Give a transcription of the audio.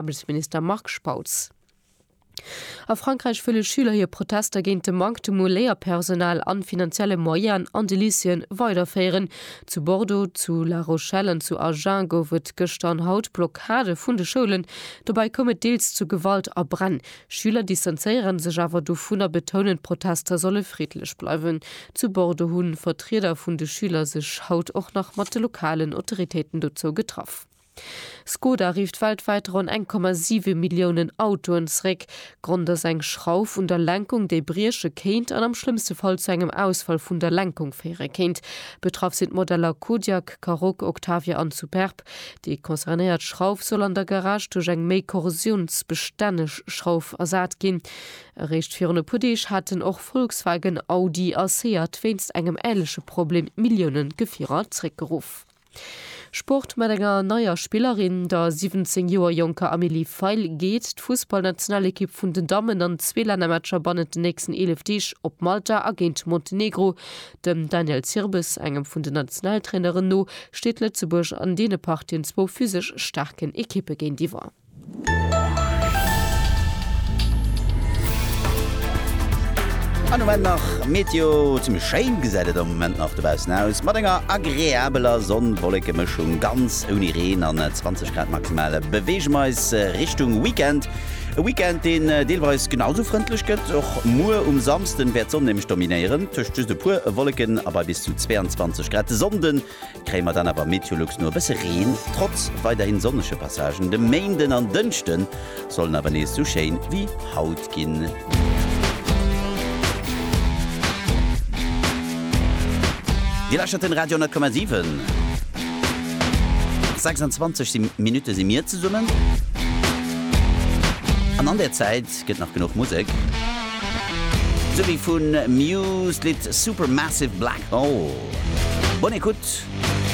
Ëmweltminister Marc Spautz. A Frankräich wëlle Schüler hir Protester géint de Manktem u Léierpersonal an finanzielle Moyenen an de Lycéeën weiderféieren. Zu Bordeaux, zu La Rochelle an zu Agen gouf et gëschter an haut Blockade vun de Schoulen. Dobäi koum et deels zu Gewalt a Bränn. Schüler distanzéiere sech awer dovun a betounen, d'Protester solle friddlech bleiwen. Zu Bordeaux hu Vertrieder vun de Schüler sech haut och nach mat de lokalen Autoritéiten dozou getraff. Skoda rifft weltwäit ronn 1,7 Milliounen Autoen zeréck. Grond ass eng Schrauf un der Lenkung, déi brieche kéint an am schlëmmste Fall zu engem Ausfall vun der Lenkung féiere kéint. Betraff sinn d'Modeller Kodiaq, Karoq, Octavia an Superb. Déi concernéiert Schrauf soll an der Garage duerch eng méi korrosiounsbestänneg Schrauf ersat ginn. Eréischt virun e puer Deeg haten och Volkswagen, Audi a Seat wéinst engem änleche Problem Millioune Gefierer zeréckgeruff. Sport mat enger neier Spillerin, der 17 Joer jonker Amélie Feil, geet d'Fussballnationalekipp vun den Dammen an zwee Lännermatcher bannent den nächsten 11 Deeg op Malta a géint Montenegro. Dem Daniel Zirbes, engem vun den Nationaltraineren, no steet Lëtzebuerg an deene Partien zwou physesch staarken Ekippe géintiwwer. An Moment nach Meteo, zimmlech schéin gesäit et am Moment nach dobaussen aus, mat enger agreabeler Sonn-Wolleke-Mëschung, ganz ouni Reen an 20 Grad maximal. Beweege mer eis Richtung Weekend, e Weekend deen deelweis genau esou frëndlech gëtt. Och muer um Samsden wäert d'Sonn nämlech dominéieren, tëscht just e puer Wolleken a bei bis zu 22 Grad. De Sonnde kréie mer dann awer Meteolux no e bësse Reen, trotz weiderhin sonnege Passagen. De Méinden an Dënschde sollen awer nees sou schéin wéi haut ginn. Dir lauschtert den Radio 10,7. 26 Minutte si mir zesummen an an där Zäit, Gëtt nach genuch Musek? Sou wéi vu Muse d'Lidd Supermassive Black Hole. Bonne écoute!